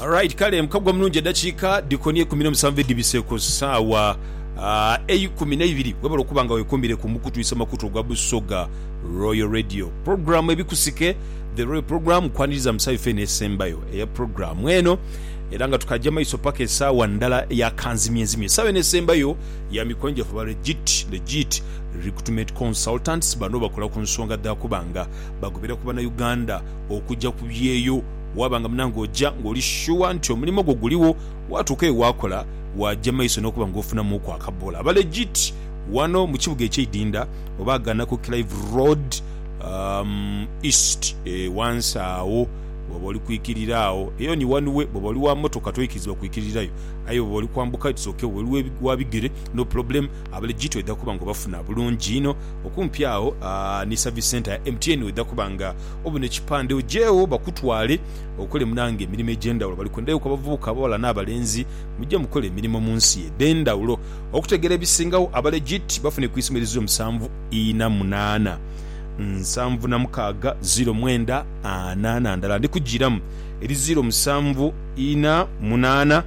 Alright kale mukagwa omulungi edakiika dikoni eikumi nomusanvu edibise ku saawa eikumi neibiri webale okuba nga wekumire ku mukutwisa makutu ogwa Busoga Royal Radio program ebikusike the royal program kwaniriza mu saawa efe eno esembayo eya program eno era nga tukaja maiso paka esaawa ndala eya kanzimye nzimye esaawa eno esembayo ya mikwano gyaffe aba legit legit recruitment consultants bano bakola ku nsonga dhakuba nga bagobera ku bana Uganda okuja ku byeyo Waaba nga munange oja ng'oli shuwa nti omulimo gwo guligho, waatuuka eyo waakola, waaja mu maiso n'okuba ng'ofunamuuku akabboola. Aba legit wano mu kibuga eky'eidinda oba aghana ku Clive Road East wansi agho bw'oba oli kwikirira agho. Eyo ni one way, bw'oba oli wa mmotoka toikirizibwa kwikirirayo. Aye bw'oba oli kwambuka it's ok, bw'oba oli wa bigere no problem. Aba legit oidha kuba ng'obafuna bulungi inho. Okumpi agho ni service centre ya MTN oidha kuba nga obone ekipande ojeegho bakutwale okole munange emirimo egyendawulo bali kwenda yoku abavubuka abawala nabalenzi mujje mukole emirimo munsi edhendawulo okutegera ebisingawo aba legit bafune kwisomo eriziru musanvu ina munana nsanvu na mukaaga ziiro mwenda ana nandala ndikujiramu eriziiro musanvu ina munana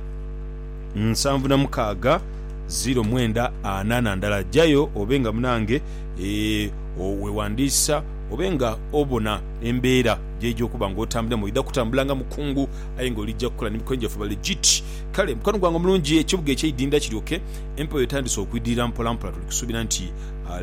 nsanvu na mukaaga ziiro mwenda ana nandala jayo obe nga munange eeh owewandiisa Obe nga obona embeera gy'oija okuba nga otambuliramu, oidha kutambula nga mukungu aye nga oligya kukola ni mikono gyaffe. Balegit. Kale mukwano gwange omulungi, ekibuga eky'eidindha kiryoke empewo etandise okwidirira mpola mpola, tuli kusuubira nti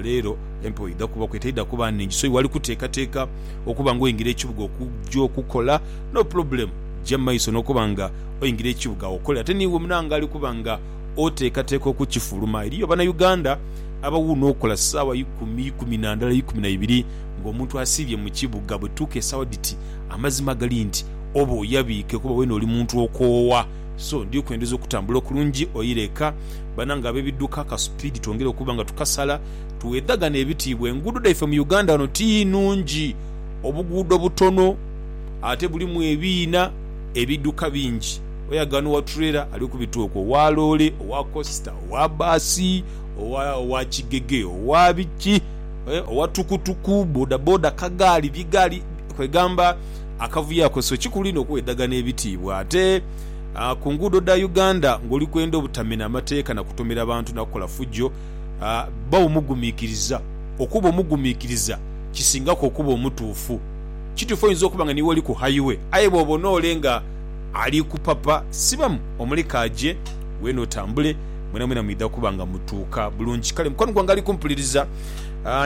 leero empewo eidha kubaku etaidha kuba nnhingi so iwali kuteekateeka okuba nga oingira ekibuga okugya okukola. No problem, gya mu maiso n'okuba nga oingira ekibuga okole ate n'iwe munange ali kuba nga oteekateeka okukifuluma. Eriyo Bannayuganda abawuuna okola ssaawa ikumi, ikumi na ndala, ikumi na ibiri ng'omuntu asiibye mu kibuga. Bwetutuuka esaawa dhiti amazima gali nti oba oyabiike kuba weena oli muntu okoowa. So ndi kwendeza okutambula okulungi oire eka. Banange ab'ebidduka akasupiidi twongere okuba nga tukasala tuweedhagane ebitiibwa. Enguudo dhaife mu Uganda wano ti nnungi. Obuguudo butono ate bulimu ebiina, ebidduka bingi. Oyagano owa turela ali kubita okwo, owa loole, owa kosita, owa bbaasi, owa kigege, owa biki, owa tukutuku, bodaboda, kagaali, bigaali, kwegamba akavuyo ako. So kikulu inho okwedhagana ebitiibwa ate ku nguudo dha Uganda ng'oli kwenda obutamena amateeka na kutomera bantu na kukola fujjo. Bba omugumiikiriza. Okuba omugumiikiriza kisingaku okuba omutuufu. Kituufu oyinza okuba nga niiwe oli ku hayiwe aye bw'oba onoole nga. Ali ku papa sibamu omule k'aje, weene otambule, mwenamwena mwidha kuba nga mutuuka bulungi. Kale mukwano gwange ali kumpuliriza,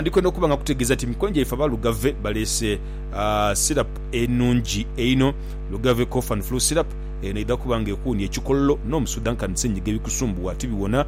ndi kwenda okuba nga nkutegeeza nti emikwano gyaife aba Lugave baleese syrup enungi einho, Lugave Cough and Flu Syrup. Eno eidha kuba nga ekuwunia ekikololo n'omusudha nkani senyiga ebikusumbuwa tibiwona.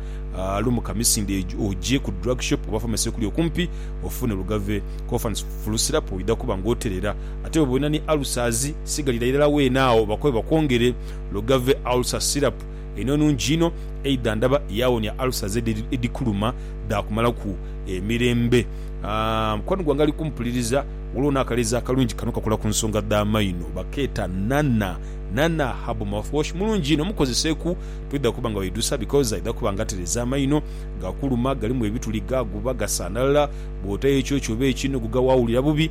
Lumuka misinde oje ku drug shop oba pharmacy ekuli okumpi ofune Lugave Cough and Flu Syrup, oidha kuba nga oterera. ate bwe bwona ni ulcers sigalira irala weena agho bakobe bakwongere Logave ulcer syrup eno nungi inho eidha ndaba yawonia ulcers edikuluma dhakumalaku emirembe aah mukwano gwange ali kumpuliriza waliwo nakaleezi akalungi kano kakola kunsonga dha maino bakeeta Nana Nana herbal mouthwash mulungi inho mukozeseku twidha kuba nga weidhusa because aidha kuba nga atereza amaino gakuluma galimu ebituli gaguba gasanhalala bwotayo ekyokyo oba ekyi noguga wawulira bubi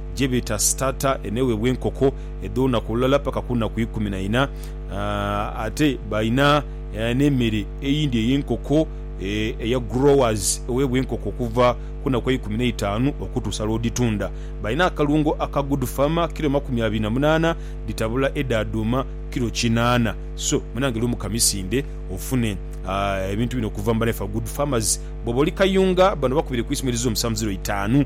gyebeeta Starter, eno eweebwa enkoko edh'olunaku olulala paka ku naku ikumi na ina. Ate balina n'emere eyindi ey'enkoko eya Growers eweebwa enkoko okuva ku naku eikumi n'eitaanu okutuusa lw'odhitunda. Balina akalungo aka Good Farmer, kilo makumi abiri na munaana dhitabula edha dhuuma kilo kinaana. So munange lumu ka misinde ofune ebintu bino okuva mu baleefa Good Farmers. Bw'oba oli Kayunga bano bakubire ku isimu erize omusanvu ziro itaanu.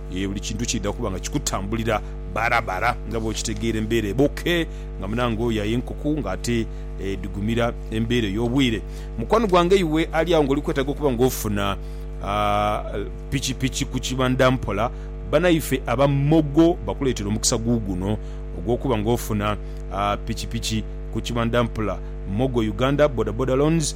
Yee, buli kintu kiidha kuba nga kikutambulira barabara nga bw'okitegeera embeera eba oke nga munange oyo aye nkuku nga ate edhigumira embeera ey'obwire. Mukwano gwange iwe ali agho ng'oli kwetaaga okuba ng'ofuna pikipiki ku kibandha mpola, banaife aba Mogo bakuleetere omukisa guuguno ogw'okuba ng'ofuna pikipiki ku kibandha mpola. Mogo Uganda Bodaboda Loans.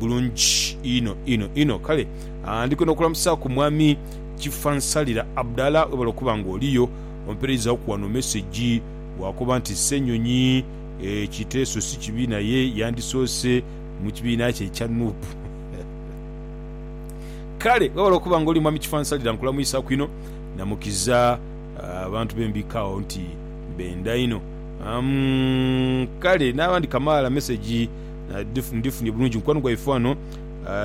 bulungi inho inho inho. Kale ndi kwenda okulamusaaku Mwami Kifansalira Abdallah. Webale okuba nga oliyo. Ompereizaaku wano mesegi bwakoba nti Ssenyonyi ekiteeso si kibi naye yandisoose mu kibiina kye ekya nup. Kale webale okuba nga oli Mwami Kifansalira. Nkulamuisaaku inho na mukiza abantu be mbika agho nti benda inho. Umm kale n'abandi kamaala mesegi. Ndhifunye bulungi mukwano gwaife wano.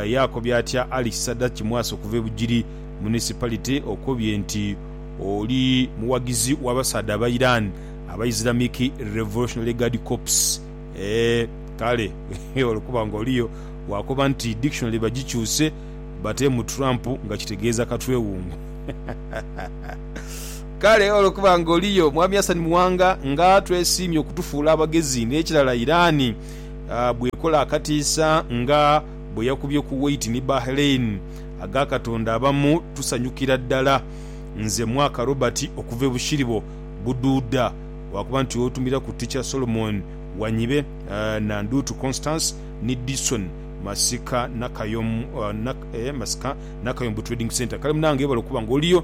Yaakobya atya Ali Kisadaki Mwasa okuva e Bugiri Municipality. Okobye nti oli mughagizi w'abasaadha aba Iran aba Islamic Revolutionary Guard Corps. Eeh kale olwokuba nga oliyo waakoba nti dictionary bagikyuse bateemu Trump nga kitegeeza katwewungu. Kale olwokuba nga oliyo Mwami Hassan Muwanga nga twesiimye okutufuula abagezi n'ekirala Iran bw'ekola akatiisa nga bwe yakubye Kuwait ni Bahrain aga Katonda abamu tusanyukira ddala. Nze Mwaka Robert okuva e Bushiribo Buduuda lwakuba nti otumira ku Teacher Solomon Wanyibe, Nandutu Constance ni Dison Masika Nakayom Masika Nakayombo Trading Centre. Kale munange webale okuba nga oliyo.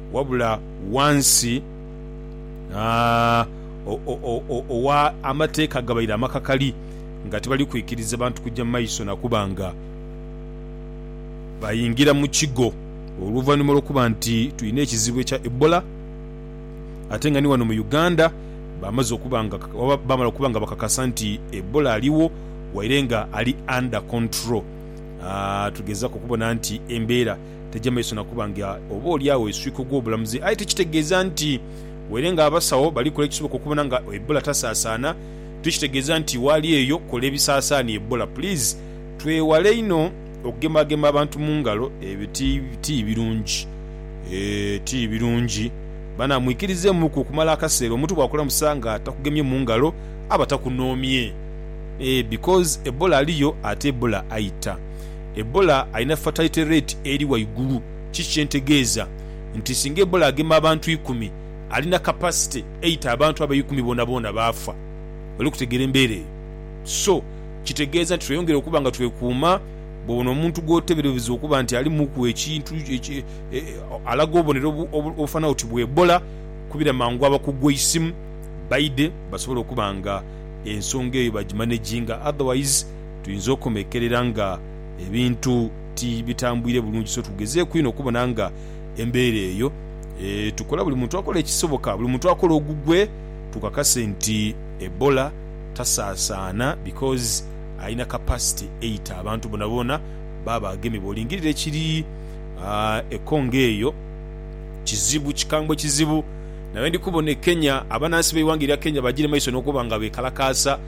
Wabula wansi owa amateeka gabaire amakakali nga tibali kwikiriza bantu kuja mu maiso na kuba nga bayingira mu kigo oluvanhuma lwokuba nti tulina ekizibu ekya Ebola ate nga ni wano mu Uganda bamaze okuba nga oba bamala okuba nga bakakasa nti Ebola aligho waire nga ali under control. Tugezaku okubona nti embeera. taja maiso na kuba nga oba oli agho eswika ogw'obulamuzi aye tikitegeeza nti were nga abasawo bali kola ekisoboka okubona nga Ebola tasaasaana tikitegeeza nti waali eyo kola ebisaasaania Ebola please twewale inho okugemagema abantu mu ngalo ebyo ti birungi eeh ti birungi bana mwikirizeemuku okumala akaseera omuntu bwakulamusa nga takugemye mu ngalo aba takunoomye eeh because Ebola aliyo ate Ebola aita. Ebola alina fatalite rate eri waigulu ki kyentegeeza nti singa Ebola agema abantu ikumi alina capacity eita abantu abo eikumi boonaboona baafa. Oli kutegeera embeera eyo? So kitegeeza nti tweyongere okuba nga twekuuma bwobona omuntu gwoteberbza okuba nti alimuku ekintu alaga obubonero obufanana oti bwa Ebola kubira mangu abakugu eisimu baidhe basobole okuba nga ensonga eyo bagimanaginga otherwise tuyinza okomekerera nga ebintu ti bitambwire bulungi. So tugezeeku inho okubona nga embeera eyo tukola, buli muntu akola ekisoboka, buli muntu akola ogugwe tukakase nti Ebola tasaasaana because alina capacity eita abantu boonaboona baaba agemye. Bw'olingirira ekiri e Congo eyo kizibu, kikambwe kizibu. Naye ndi kubona e Kenya, abanansi b'eighanga erya Kenya bagiire maiso n'okuba nga beekalakaasa.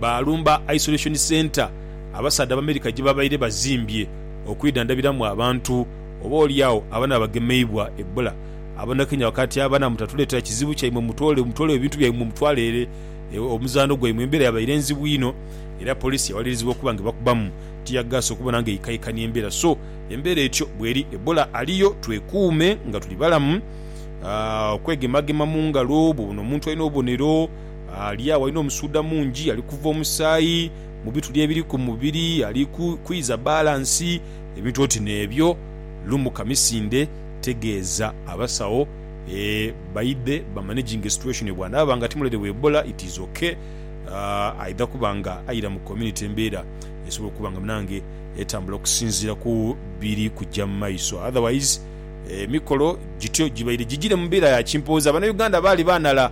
baalumba Isolation Centre abasaadha Abamerika gye babaire bazimbye okwidhandhabiramu abantu oba oli agho abanaba bagemeibwa Ebola. Abanakenya bakaati abana mutatuleetera kizibu kyaimwe mutwole mutwole ebintu byaimwe mutwale ere omuzaano gwaimwe. Embeera yabaire nzibu inho era poliisi yawalirizibwa okuba nga ebakubamu ttiyaggaasi okubona nga eikaikania embeera. So, embeera etyo bweri. Ebola aliyo, twekuume nga tuli balamu, okwegemagema mu ngalo, bw'obona omuntu alina obubonero, Ali agho alina omusuudha mungi, ali kuva omusaayi mu bituli ebiri ku mubiri, ali kwiza balansi, ebintu oti n'ebyo. Lumuka misindhe, tegeeza abasawo baidhe bamanaginge situation. Bw'anaaba nga ti mulwaire wa Ebola, it is ok, aidha kuba nga aira mu community embeera esobola okuba nga munange etambula okusinziira ku biri kuja mu maiso. Otherwise emikolo gityo gibaire gigire mu mbeera ya kimpooza. Bannayuganda baali baanhala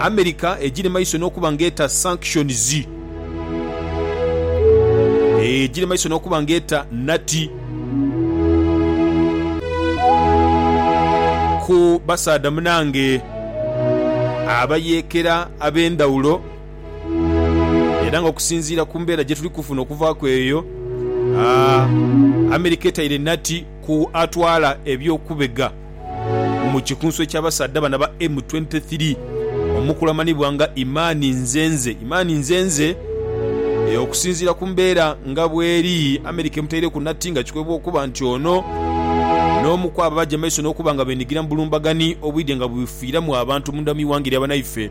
America egire maiso n'okuba ng'eta sanctions, egire maiso n'okuba ng'eta nati ku basaadha munange abayeekera ab'endhawulo era nga okusinziira ku mbeera gye tuli kufuna okuvaaku eyo, America etaire nati ku atwala eby'okubega. mu kikunsu eky'abasaadha bano aba M23 omukulu amanhibwa nga Imani Nzenze Imani Nzenze Okusinziira ku mbeera nga bweri, America emutaireku nati nga kikwebwa okuba nti ono n'omu kwabo abaja maiso n'okuba nga benigira mu bulumbagani obwidhe nga bwebufiiramu abantu munda mu ighanga erya banaife.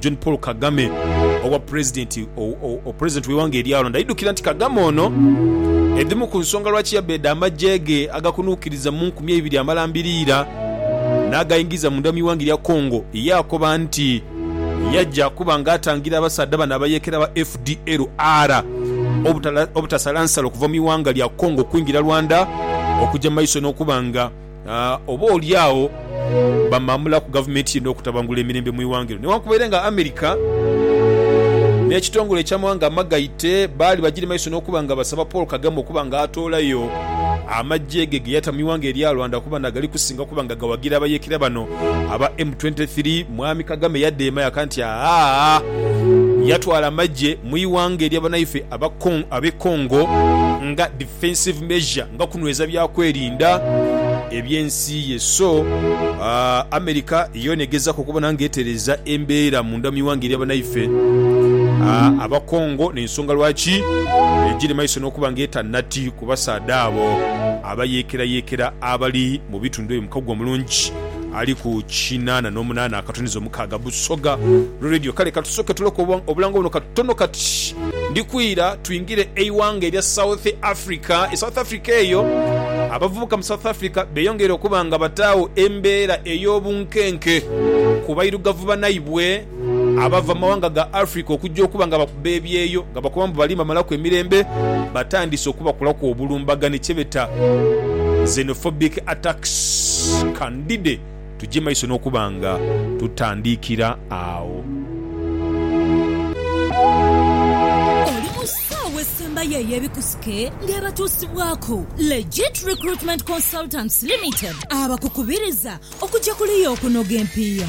John Paul Kagame obwa Pulezidenti Pulezidenti w'eighanga eryalonda aidhukira nti Kagame ono edhimu ku nsonga lwaki yabeeda amagye ge agakunuukiriza mu nkumi eibiri amalambiriira n'againgiza munda mu ighanga erya Congo yaakoba nti yaja kuba nga atangira abasaadha bano abayeekera aba fdlr obutasalansala okuva mu ighanga lya Congo okwingira Rwanda okuja maiso n'okuba nga Oba olyagho bamamula ku gavumenti ye n'okutabangula emirembe mu ighanga eryo newankubere nga America n'ekitongole eky'amawanga amagaite baali bagiri maiso n'okuba nga basaba Paul Kagame okuba nga atoolayo amaggye ge geyata mu ighanga erya Rwanda kuba nagali kusinga okuba nga gawagira abayeekera bano aba M23. Mwami Kagame yadeema yaka nti ahaa yatwala amaggye mu ighanga erya banaife ab'e Congo nga Defensive measure nga kunweza byakwerinda eby'ensi ye so America yoona egezaku okubona nga etereeza embeera munda mu ighanga erya banaife aba Congo n'ensonga lwaki egiri maiso n'okuba nga eta nati ku basaadha abo abayeekerayekera abali mu bitundu ebyo mukago omulungi ali ku kinaana n'omunaana akatoniza omukaaga Busoga Lwe Radio Kale katusoke tuloke obulango buno katono kati ndikwira twingire eighanga erya South Africa. E South Africa eyo, abavubuka mu South Africa beyongeire okuba nga bataagho embeera ey'obunkenke ku bairugavu banaibwe abava mu mawanga ga Africa okujja okuba nga bakuba ebyeyo nga bakoba mbu bali bamalaku emirembe batandise okubakolaku obulumbaganhi kyebeta xenophobic attacks. Candide. tugye maiso n'okuba nga tutandiikira agho. Oli mu ssaawa esembayo ey'ebikusike ng'ebatuusibwaku Legit Recruitment Consultants Limited abakukubiriza okugya kuliya okunoga empiiya.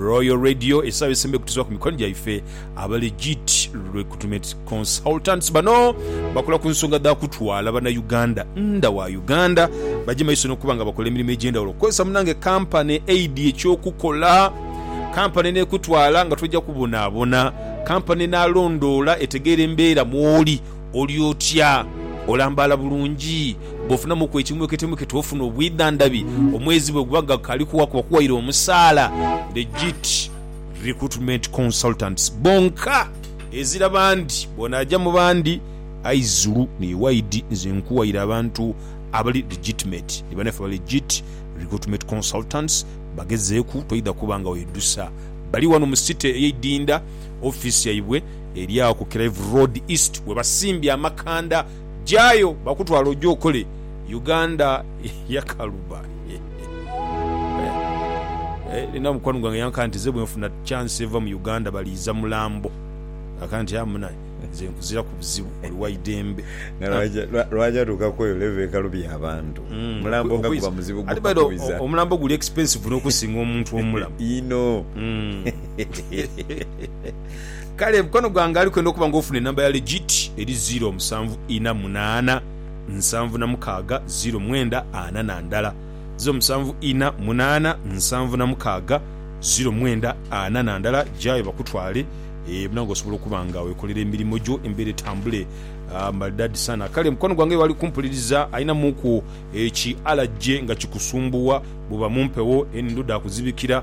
Royal Radio esaawa esembayo kutuzibwa ku mikono gyaife aba Legit Recruitment Consultants. Bano bakola ku nsonga dha kutwala Bannayuganda nda wa Uganda baje maiso n'okuba nga bakola emirimu egy'endhawulo. Okukozesa munange kampani aid eky'okukola, kampani n'ekutwala nga toja kubonaabona, kampani enaalondoola etegeere embeera mw'oli, Oli otya? Olambaala bulungi? Bw'ofunamuku ekimweketwemwekete ofuna obwidhandhabi, omwezi bwe guba nga gukaali kuwaku bakuwaire omusaala. Legit Recruitment Consultants bonka ezira bandi, bw'onaaja mu bandi ayi zulu ni waidi nze nkuwaire abantu abali legitimate ni banaffe aba Legit Recruitment Consultants bagezeeku toidha kuba nga weidhusa. Bali wano mu City ey'eidinda, ofiisi yaibwe. Eri agho ku Clive Road East webasimbye amakanda jayo bakutwale oje okole Uganda yakaluba Eeh Nina mukwano gwange yanka nti ze bwenfuna chance eva mu Uganda baliiza mulambo Naka nti aah munaye nze nkuziraku buzibu oli waidembe Nalwaja lwaja atuuka kweyo level ekalubya abantu mulambo nga guba muzibu gukwiza Omulambo guli expensive nokusinga omuntu omulamu inho. Kale mukwano gwange ali kwenda okuba nga ofuna enamba ya legit eri ziro musanvu ina munana nsanvu na mukaga ziro mwenda ana na ndala ziro musanvu ina munana nsanvu na mukaga ziro mwenda ana na ndala jayo bakutwale e muna nga osobola okuba nga wekolera emirimo gyo embera etambule uh, maridadi sana kale mukwano gwange wali kumpuliriza alina muku eki alajje nga kikusumbuwa buba mumpewo enduda kuzibikira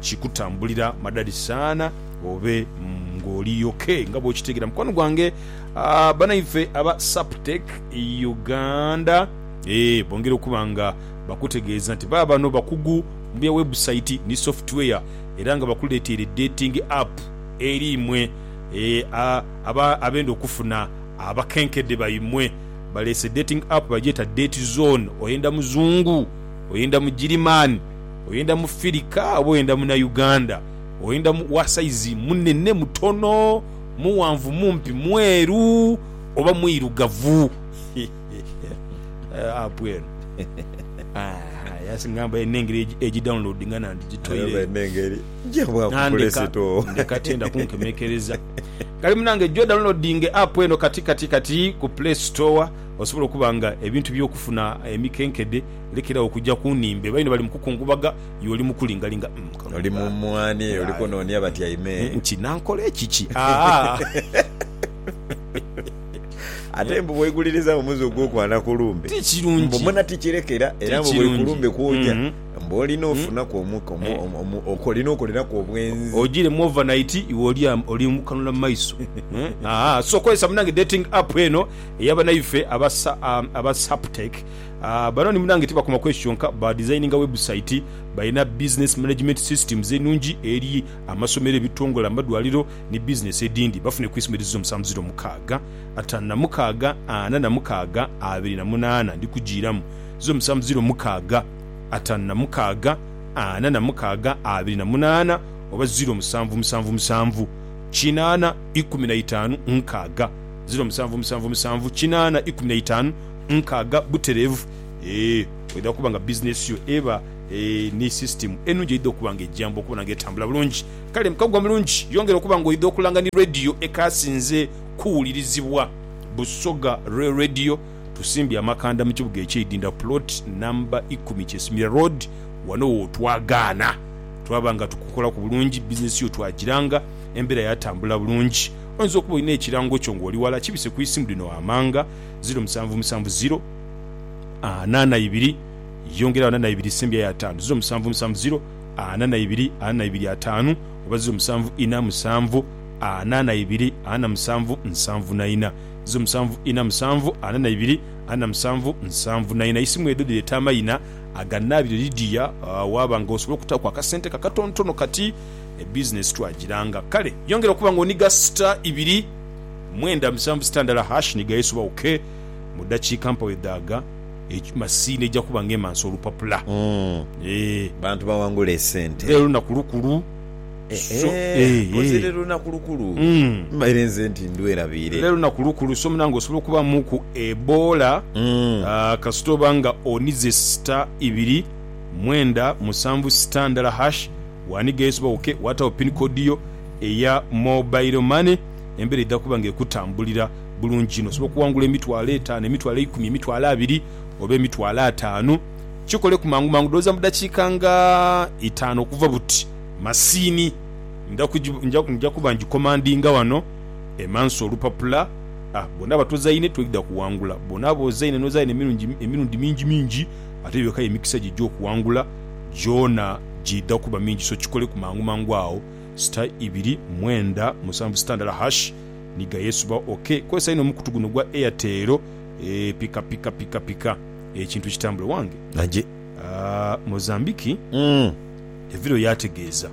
kikutambulira madadi saana obe ngoli yoke nga bwokitegera mukwano gwange aah banaife aba Saptec Uganda eeh bongera okuba nga bakutegeeza nti baabano bakugu mubya website ni software era nga bakuleteire dating app eri imwe eeh aba abenda okufuna abakenkede baimwe baleese dating app bagyeta Date Zone oyenda muzungu oyenda mugirimaani oyenda mufirika oba oyenda munauganda, oyenda wa saizi munene mutono, muwanvu mumpi, mweru oba mwirugavu app eno yasingamba erina engeri ejidownloadinga nandigitoire nandeka ndeka tenda kunkemekereza kale munange jo downloadinge app eno kati kati kati ku play store osobola okuba nga ebintu byokufuna emikenkede Lekeragho okuja ku nhimbe. Baino bali mu kukungubaga, iwe oli mu kulingalinga. Umm, kano Oli mu kaana. mwanhi, oli Aye. kunoonia batyaime. Umm, nti, Nankole kiki? Aa! Ate mbu bwoiguliriza omuze ogw'okwana ku lumbe, Ti kirungi. mbu muna ti kirekera, era Ti mbu buli ku kirungi. lumbe kwoja, Mhm. mbu olina ofunaku omu, omu, Eh. omu, omu, oko- olina okoleraku obwenzi. Ojire mu overnight, iwe oli am, oli mu kanula mu maiso. Eh, aa, so kozesa munange dating app eno eya banaife aba sa, aa, aba Saptec. Banoni munange tibakoma kwekyo kyonka, ba dizayininga webusaiti, balina bizinesi manejimenti sisitimuzi enungi eri amasomero, ebitongole, amadwaliro ni bizinesi edindi. Bafune ku isima edhizira omusanvu ziro mukaaga, atanu na mukaaga, ana na mukaaga, abiri na munaana. Ndi kujiiramu. Ziro musanvu ziro mukaaga, atanu na mukaaga, ana na mukaaga, abiri na munaana oba ziro musanvu musanvu musanvu, kinaana, ikumi na itaanu, nkaaga. Ziro musanvu musanvu musanvu, kinaana, ikumi na itaanu. nkaaga butereevu. Ee, oidha kuba nga bizineesi yo eba ni sisitimu enungi eidha okuba nga ejamba okubona nga etambula bulungi. Kale mukaguwa mulungi, yongera okuba nga oidha okulanga ni radiyo ekaasinze kuwulirizibwa. Busoga lwe radiyo, tusimbye amakanda mu kibuga eky'e Idinda ku pulooti namba ikumi Kyesimira Road. Wano w'otwagaana. Twaba nga tukukolaku bulungi, bizineesi yo twagiranga, embeera yaatambula bulungi. Oinza okuba olina ekirango kyo ng'oli wala, kibise ku isimu lino ghamanga. ziro musanvu musanvu ziro ana na ibiri yongerayo ana na ibiri sembya yo ataanu ziro musanvu musanvu ziro ana na ibiri ana na ibiri ataanu oba ziro musanvu ina musanvu ana na ibiri ana musanvu nsanvu na ina ziro musanvu ina musanvu ana na ibiri ana musanvu nsanvu na ina isimu edho dhireta amayina aganabire Lydia uh, waba nga osobola okutaku akasente ko akatontono kati ebizinesi twagiranga kale yongera okuba nga oniga sita ibiri mwenda musanvu sitandala hash ni gaesuba ok mu dakiika mpagho edhaga eki masiini eja kuba nga emansa olupapula eeh. Bantu bawangule esente. Lero lunaku lukulu so eeh eeh. Lero lunaku lukulu mbaire nze nti ndwerabiire. Lero lunaku lukulu so munange osobola okuba muku eboola kasita oba nga onize sita ibiri mwenda musanvu sita ndala hash wani gaesuba ok watagho pin code yo eya mobile money. embera eidha kuba nga ekutambulira bulungi inho. Osobola okuwangula emitwalo etaano, emitwalo eikumi, emitwalo abiri oba emitwalo ataanu. Kikoleku mangu mangu, ndhowooza mu dakiika nga itaanu okuva buti. Masiini nja kuba ngikomandinga wano emanso olupapula. Ah, bw'onaaba tozaine toidha kuwangula. Bw'onaaba ozaine n'ozaine emirundi mingi mingi, ate eyo eka y'emikisa gyo egy'okuwangula gyona giidha kuba mingi. So kikoleku mangu mangu agho. Sita ibiri mwenda musanvu sita ndala hash ni ga yesubagho ok kozesa inho omukutu guno ogwa Airtel eeh pika pika pika pika ekintu kitambule wange. Nage aah Mozambique evirayo yategeeza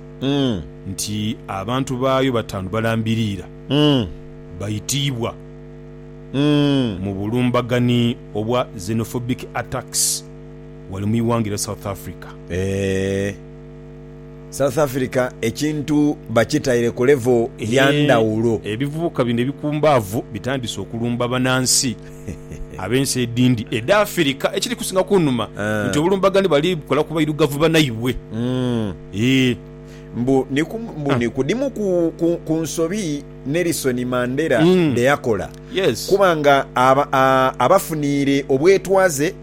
nti abantu baayo bataanu balambiriira baitiibwa mu bulumbaganhi obwa xenophobic attacks ghale mu ighanga erya South Africa. South Africa ekintu bakitaire ku level ya ndhawulo. Ebivubuka bino ebikumbaavu bitandise okulumba banansi ab'ensi edindi edha Afirika. Ekiri kusinga kunuma nti obulumbagane bali bukola ku bairugavu banaibwe. Eeh. Mbu ni ku dhimu ku nsobi Nelson Mandela dheyakola kuba nga abafuniire obwetwaze.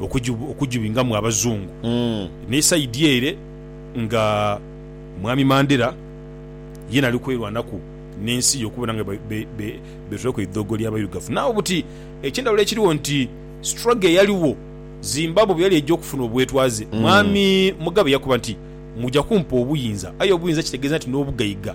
okujibingamu abazungu ni side ere nga mwami Mandela yena ali kwerwanaku nensi ye okubona nga betulaku eidhogo lya bairugavu nagho buti ekyendhawulo ekiriwo nti struggle eyaliwo Zimbabwe bweyali eja okufuna obwetwaze mwami Mugabe yakoba nti muja kumpa obuyinza aye obuyinza kitegeza nti nobugaiga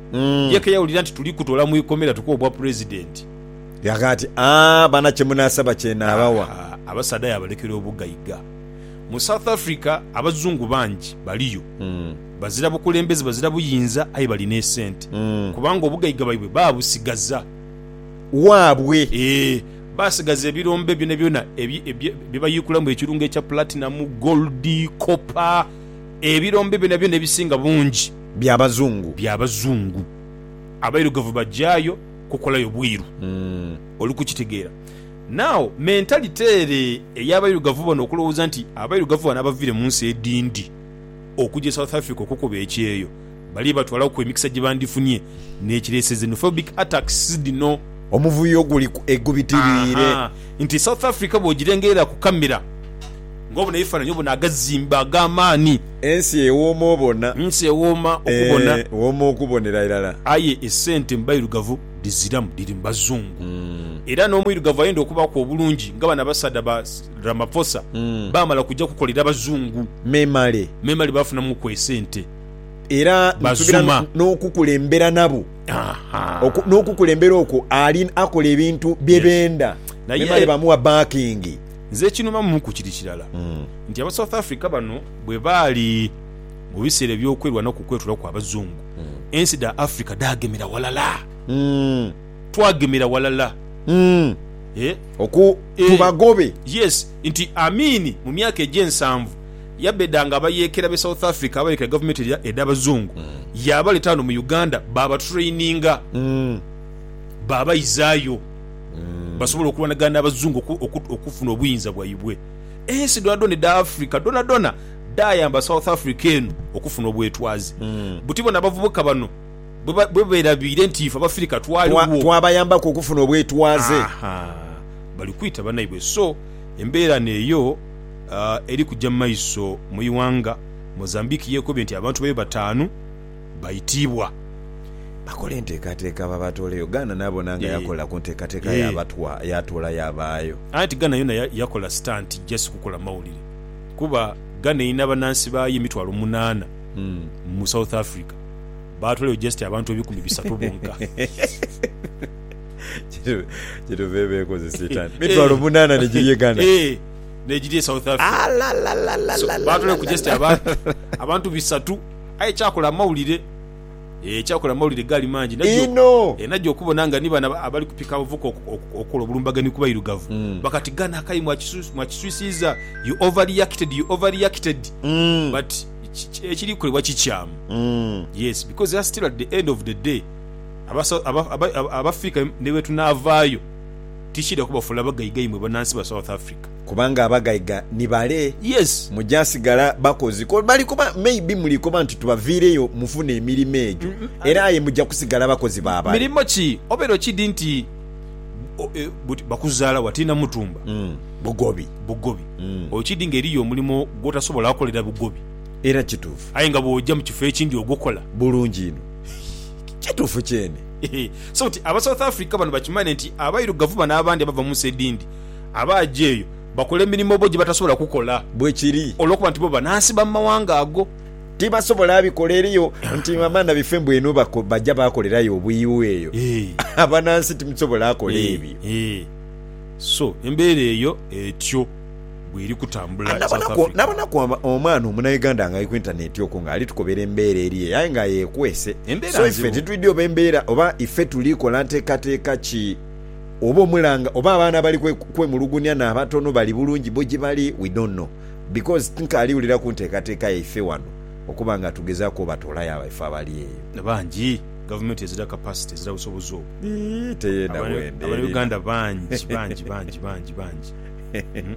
Mm. Ye ke yawulira nti tuli kutoola mu ikomera tukuwe obwa Pulezidenti. Yagha ati, Aa, baana kye munaasaba kye naabawa. Aa, abasaadha yaabalekera obugaiga. Mu South Africa Abazungu bangi baliyo. Mm. Bazira bukulembeze, bazira buyinza, aye bali n'esente. Mm. Kubanga obugaiga bwaibwe baabusigaza. Waabwe. Ee, baasigaza ebirombe byonabyona ebi, ebye, bye bayiikulamu ekirungo ekya Platinum, Gold, Copper, ebirombe byonabyona ebisinga bungi. Bya bazungu. Bya bazungu. Abairugavu bajaayo kukolayo bwiru. Oli kukitegeera? Now, mentality ere ey'abairugavu bano okulowooza nti abairugavu bano abaviire mu nsi edindi okuja e South Africa okukuba ekyeeyo bali batwalaku emikisa gye bandifunye n'ekireese xenophobic attacks dhino. Omuvuyo guli ku egubitiriire. Ahaa. Nti South Africa bw'ogirengerera ku camera Ng'obona ebifaananyi obona agazimbe ag'amaani. Ensi ewooma obona. Ensi ewooma okubona. Ee, wooma okubonera irala. Aye esente mu bairugavu dhiziramu, dhiri mu bazungu. Era n'omwirugavu ayenda okubaaku obulungi nga bano abasaadha ba Ramaphosa baamala kuja kukolera bazungu, Memale. memale baafunamuku esente. Era ni tubira Bazuma. n'okukulembera nabo. Aha. Oku, n'okukulembera okwo ali akola ebintu bye Yes. benda. Naye- Memale bamugha backing. Nze ekinuma mu ku kiri kirala nti aba South Africa bano bwe baali mu biseera eby'okwerwana ku kwetula kwa bazungu, ensi dha Africa dhaagemera ghalala. Twagemera ghalala. Eh. Oku, Eh. tubagobe. Yes, nti Amin mu myaka egy'ensanvu yabedanga abayeekera b'e South Africa abayeekera gavumenti edha edh'abazungu, yaabaleeta ghano mu Uganda baabatraininga, baabaizaayo. basobola okulwanagana n'Abazungu okufuna obuyinza bwaibwe. Ensi dhoonadhoona edha Africa dhoonadhoona dhaayamba South Africa eno okufuna obwetwaze. Buti bona abavubuka bano bwe beerabiire nti ife Abafirika twaligho. Twabayambaku okufuna obwetwaze. Aha, bali kwita banaibwe. So, embeera n'eyo eri kuja mu maiso mu ighanga Mozambique. Yeekobye nti abantu bayo bataanu. baitiibwa. Bakola enteekateeka babatooleyo. Ghana nabona nga yakola ku nteekateeka yabatwa, yatoola yabaayo. Anti Ghana yona yakola sitanti just kukola mawulire kuba Ghana erina banansi baayo emitwalo munaana mu South Africa baatoolayo just abantu ebikumi bisatu bonka. Kyetuva eba ekoze sitanti mitwalo munaana negiri e Ghana. Eeh negiri e South Africa. So baatoolayo ku just abantu bisatu. Aye kyakola amawulire eh, kyakola amawulire gaali mangi nagyo Inho. eh, nagyo okubona nga ni bano abali kupika abavubuka oku- oku- okukola obulumbaganhi ku bairugavu Mm. bakati gano akayi mwakisu- mwakiswisiiza, you overreacted, you overreacted. Mm. But ki- ki- ekiri kukolebwa kikyamu. Mm. Yes, because that's still at the end of the day aba Sou- aba- aba- aba- Abafirika ni bwetunaavaayo tikiidha kubafuula bagaiga imwe banansi ba South Africa. Kubanga abagaiga ni bale. Yes. Muja sigala bakozi. Ko bali koba maybe muli koba nti tubaviireyo mufune emirimo egyo era aye muja kusigala bakozi ba bale. Mirimo ki? Obeera okidi nti buti bakuzaala wa tiina mutumba. Bugobi. Bugobi. Okidi nga eriyo omulimo gwotasobola kolera bugobi. Era kituufu. Aye nga bwoja mu kifo ekindi ogukola. Bulungi inho. Kituufu kyene. So nti aba South Africa bano bakimane nti abairugavu bano abandi abava munsi edindi. Abaaja eyo bakola emirimo bo gye batasobola kukola. Bwe kiri. Olw'okuba nti bo banansi ba mu mawanga ago. Tibasobola bikola eriyo nti abaana baife mbwenu baja baakolerayo obwiiwo eyo. Abanansi timusobola kola ebyo. Eeh. So, embeera eyo etyo bw'eri kutambula e South Africa. Nabonaku omwana Omunauganda ng'ali ku intaneeti okwo ng'ali tukobera embeera eri eyo aye nga yeekwese. So ife titwidhi oba embeera oba ife tuli kola nteekateeka ki. oba omulanga oba abaana bali kwemulugunia nabatono bali bulungi bo gyebali we don't know because tinkaali wulira ku nteekateeka yaife wano okuba nga tugezaku obatoolayo abaife abali eyo. Bangi. Gavumenti ezira capacity, ezira busobozi obwo. Yii teyenda bwenda erina. Abana Uganda bangi bangi bangi bangi bangi uhmm.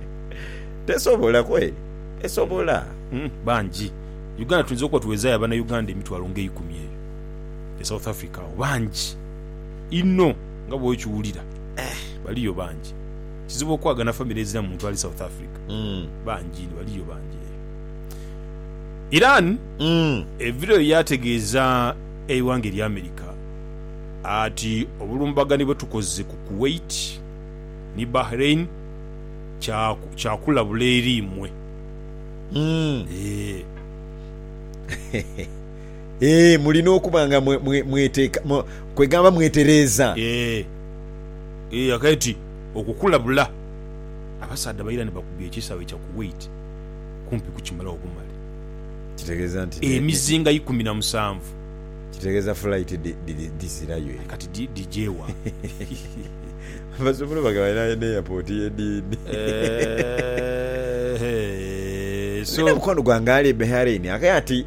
Tesobola kweri tesobola. Uhmm bangi. Uganda tuyinza okuba tuwezayo abana Uganda emitwalo nga eikumi eyo e South Africa awo bangi inho. Nga bwokiwulira baliyo bangi. Kizibu okwagana famire ezira muntu ali South Africa. Bangi inho baliyo bangi eyo. Iran evireyo yategeeza eighanga erya America ati obulumbaganhi bwetukoze ku Kuwait ni Bahrain kya kulabula eri imwe. Eeh. Ee, mulina okuba nga mwe, mwe, mweteeka, mwe, kwegamba mwetereeza. Ee, ee, akaiti okukulabula. Abasaadha baira ni bakubya ekisaawe kya Kuwait kumpi kukimalagho bumale. Kitegeeza nti ne, Emizinga ikumi na musanvu. Kitegeeza fulaiti dhi, dhi, dhizirayo Aye eyo. kati dhi, dhije wa? Basobola oba nga balina n'airport y'ediini. Eehh, Nina so. mukwano gwange ali e Bahrain, akaye ati.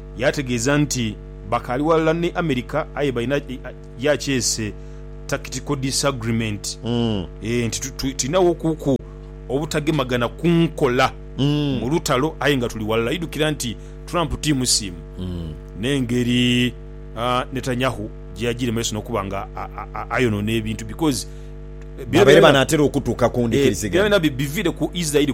Yaategeeza nti bakaali ghalala ni America aye balina ya kyese Tactical Disagreement nti tulina wo kuku obutagemagana ku nkola mu lutalo aye nga tuli ghalala. Idhukira nti Trump ti musiimu n'engeri Netanyahu gye yagiremeesa n'okuba nga ayonoona ebintu because byonabyona biviire ku Israeli.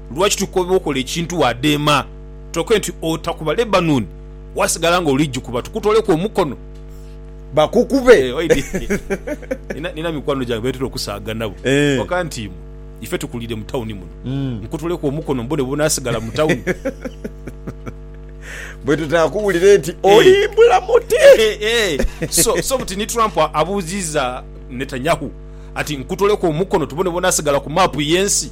Lwaki tukooba okola ekintu wadheema toke nti otakuba Lebanoni wasigala nga oli jikuba tukutoleku omukono. Bakukube. Nina mikwano gyange betera okusaaga nabo waka nti imwe ife tukulire mu tawuni muno nkutoleku omukono mbone bwonasigala mu tawuni. Bwetutaakubulire nti olimbula muti. So buti ni Trump abuuziza Netanyahu ati nkutoleku omukono tubone bwonasigala ku maapu yensi.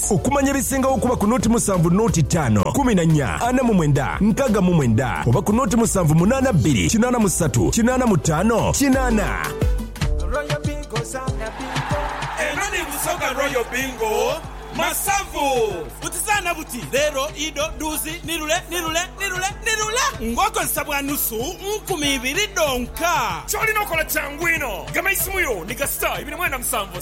Okumanya ebisingagho okuba ku noti musanvu noti taano kumi na nya ana mu mwenda nkaaga mu mwenda oba ku noti musanvu munaana bbiri kinaana musatu kinaana mutaano kinaana. Royal Bingo zaana bingo. Eno ni Busoga Royal Bingo Masavu. Buti zaana buti, leero, ido, duuzi, nirule, nirule, nirule, nirule ng'okozesa bwa nusu nkumi ibiri dhonka. Ky'olina okola kyangu inho. Gema eisimu yo ni kasita ibiri mwenda musanvu.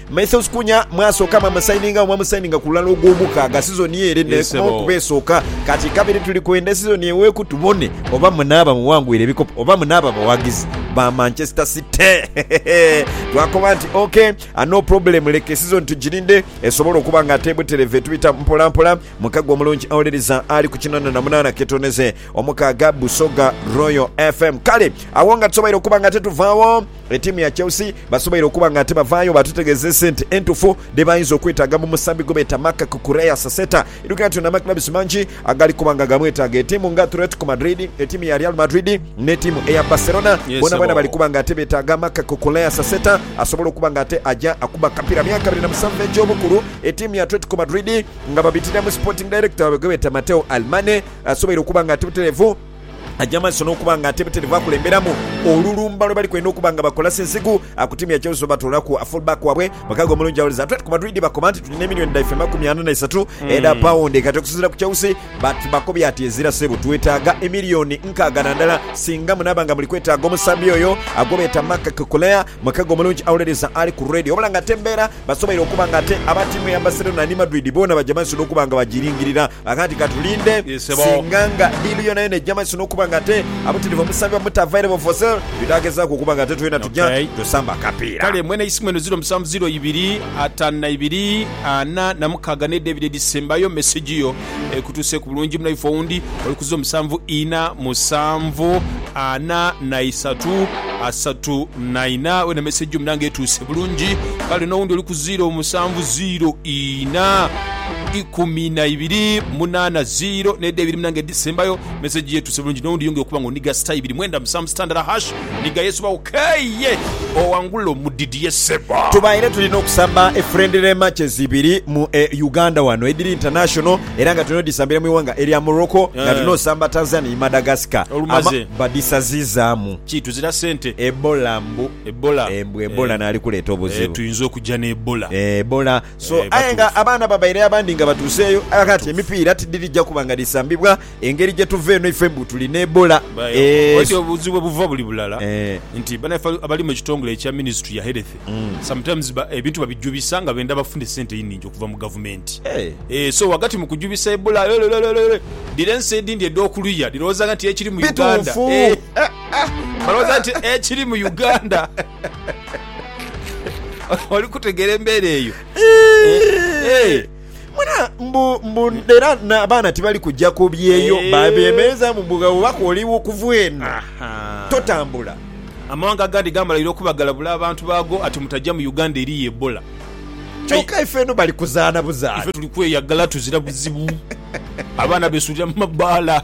Mathews Kunya mwasooka mwamusainingagho mwamusayininga ku lulala ogw'omukaaga sizoni ere Yes, n'ekomawo sebo. okuba esooka. Kati kabiri tuli kwenda sizoni eweeku tubone oba munaaba muwangwire ebikopo oba munaaba bawagizi ba Manchester City. Twakoba nti ok no problem leka esizoni tugirinde esobole okuba nga ate butereevu etubita mpolampola. Mukago omulungi awuliriza ali ku kinaana na munaana ketoneze omukaaga Busoga Royal FM. Kale agho nga tusoboire okuba nga ate tuvaawo. Etiimu ya Chelsea basoboire okuba nga ate bavaayo baatutegeeza esente entufu dhe baayinza okwetaaga mu musambi gwe beeta Marc Cucurella Saseta. Idhukira nti ono amakilabisi mangi agali kuba nga gaamwetaaga. Etiimu nga Atletico Madrid, etiimu ya Real Madrid n'etiimu eya Barcelona boonaboona bali kuba nga ate beetaaga Marc Cucurella Saseta asobole okuba nga ate aja akuba akapiira. Myaka abiri na musanvu egy'obukulu, etiimu ya Atletico Madrid nga babitira mu Sporting Director waabwe gwe beeta Matteo Almane asoboire okuba nga ati butereevu, Aja maiso n'okuba nga ate bitirivu akulemberamu olulumba lwebali kwenda okuba nga bakola sinsiku akutimya Chelsea bwebatoolaku full back waabwe mukago omulungi awoleza Atletico Madrid bakoba nti tulina emillioni dhaife makumi ana na isatu edha paundi kati okusinzira ku Chelsea bakobye ati ezira sebo twetaaga emillioni nkaaga na ndala singa munaaba nga muli kwetaaga omusambi oyo gwebeeta Marc Cucurella mukago omulungi awoleleza ali ku radio wabula nga ate embeera Basoboire okuba nga ate aba tiimu ya Barcelona ni Madrid boona baja maiso n'okuba nga bagiringirira. Aghaadi ka tulinde singa nga diilu yoonayoona eja maiso n'okuba nga ate abutirivu omusambi bamuta Vairebo for sale, twidhaagezaku okuba nga ate twena tuja tusamba akapiira. Kale mwena isimu eno 0702 52 46 n'edho ebiri edhisembayo, mesegi yo. ekutuuseeku bulungi muno ife owundi oli kuziiro musanvu ina musanvu ana na isatu asatu na ina wena message yo muna nga etuuse bulungi kale nowundi oli kuziiro musanvu ziiro ina ikumi na ibiri munana ziiro neda ibiri muna nga edisembayo message yo etuuse bulungi nowundi yongera okuba nga oniga star ibiri mwenda musanvu sitandara hash Ni gha Yesu bawo kei ye owangule omudidie sebo. Tubaire tulina okusamba e friendly matches ibiri mu e Uganda wano edhiri international era nga tulina odhisambira mu ighanga erya Morocco nga tulina osamba Tanzania ni Madagascar ama badhisazizaamu. Ki tuzira sente. Ebola mbu Ebola mbu Ebola naali kuleeta obuzibu. Tuyinza okuja ne Ebola. Ebola so aye nga abaana babaire abandi nga batuuseeyo aye kati emipiira tidhirija kuba nga dhisambibwa Engeri gyetuva eno ife mbu tuli ne Ebola eeh. Obuzibu webuva buli bulala nti banaife abali mu kitongole ekya ministry ya health sometimes ebintu babijubisa nga benda bafune sente einingi okuva mu gavumenti eeh so wagati mu kujubisa Ebola yolelelelele dhira ensi edindi edhokuluya dhirowozanga nti ekiri mu Uganda eeh balowoza nti ekiri mu Uganda oli kutegera embera eyo eeh. Mwena mbu mbu era n'abaana tibali kuja ku byeyo Eh. babeemerezaamu mbu ghawo baka oli wo kuva eno Aha. totambula. Amawanga agandi gaamalaire okuba galabula abantu baago ati mutajja mu Uganda eriyo Ebola. Aye Kyoka ife eno bali kuzaana buzaana. ife tuli kweyagala tuzira buzibu. Abaana beesuulira mu mabbaala.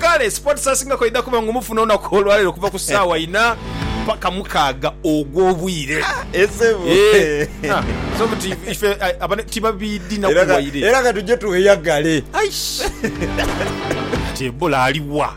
Kale Sports Asinga kw'aidha kuba ng'omufuna olunaku olwaleero okuva ku ssaawa ina paka mukaaga ogw'obwire. Eh, ah, so buti ife ah, abane tibabiidhi na kuwaire. Era ka tuje tweyagale. Aish! Kati Ebola aliwa?